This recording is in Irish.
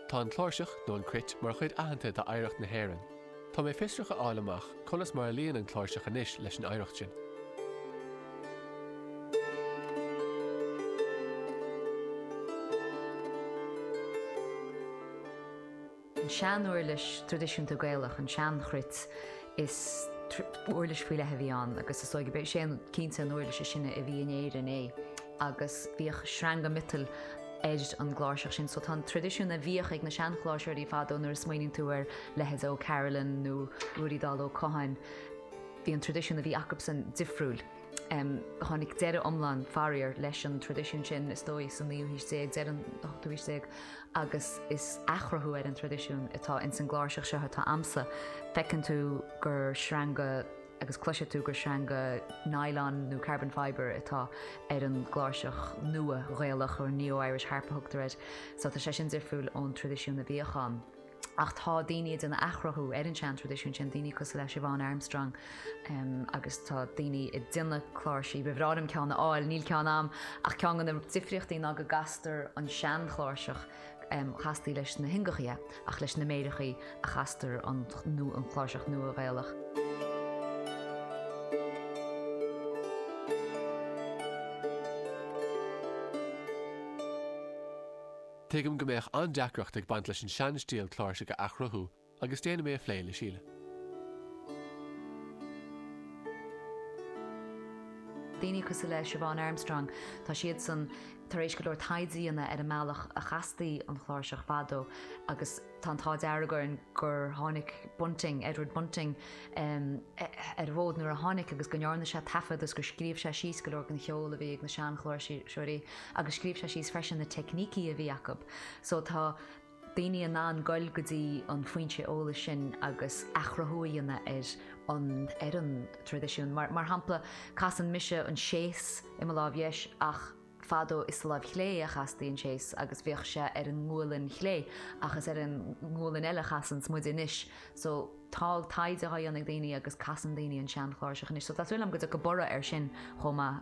Tá an chláirseach, nó an chruit, mar chuid aitheanta d'oidhreacht na hÉireann. Tá mé fiosrach a fháil amach conas mar a luíonn an chláirseach anois leis an oidhreacht sin. An sean-uirlis traidisiúnta Gaelach, an tsean-chruit, is uirlis faoi leith a bhí ann agus is dóigh gurb é sin cinnte an uirlis is sine a bhí in Éirinn. agus bhíodh sreanga miotail ar an gcláirseach sin, so tá an traidisiún a bhíodh ag na seanchláirseoirí fadó nuair a smaoiníonn tú ar leithéid Ó Carolan nó Ruairí Dall Ó Catháin, bhí an traidisiún a bhí acubsan difriúil. Tháinig deireadh iomlán, faraor, leis an traidisiún sin is dóigh sa naoú haois déag, deireadh an ochtú haois déag, agus is athchruthú ar an traidisiún atá ins an gcláirseach seo atá a'msa, feiceann tú gur sreanga. agus cloisfidh tú gur sreanga nylon nó carbon fibre atá ar an gcláirseach nua Ghaelach nó Neo Irish Harp a thugtar air, so tá sé sin difriúil ón traidisiún a bhíodh ann. Ach tá daoine ag déanamh athchruthú ar an seantraidisiún sin, daoine cosúil le Siobhán Armstrong agus tá daoine ag déanamh cláirsí, ba bhreá liom ceann a fháil, níl ceann a'm, ach ceann de na difríochtaí ná go gcastar an seanchláirseach, chastaí leis na hiongachaithe. ach leis na méireachaí a chastar an chláirseach nua ghaelach. Tuigim go mbeadh an-deacracht ag baint leis an seanstíl cláirsigh a athchruthú agus déanfaidh mé a phlé le Síle. Daoine cosúil le Siobhán Armstrong, tá siad san Tar éis go leor taighde a dhéanamh ar an mbealach a chastaí an chláirseach fadó agus tá an t-ádh dearg orainn gur tháinig Bunting, Edward Bunting, ar an bhfód nuair a tháinig agus go ndearna sé taifead is gur scríobh sé síos go leor den cheol a bhí ag na seanchláirseoirí agus scríobh sé síos freisin na teicnící a bhí acu. So tá. daoine in ann goil go dtí an foinse eolais sin agus athchruthú a dhéanamh ar an ar an traidisiún. Mar mar shampla, casann mise an séis i mo láimh dheis ach fadó is sa láimh chlé a chastaí an séis agus bhíodh sé ar an ngualainn chlé ach is ar an ngualainn eile a chasanns muide anois. So, tá taighde dhá dhéanamh ag daoine agus casann daoine an sean chláirseach anois. So, tá súil agam go dtiocfaidh borradh ar sin chomh maith.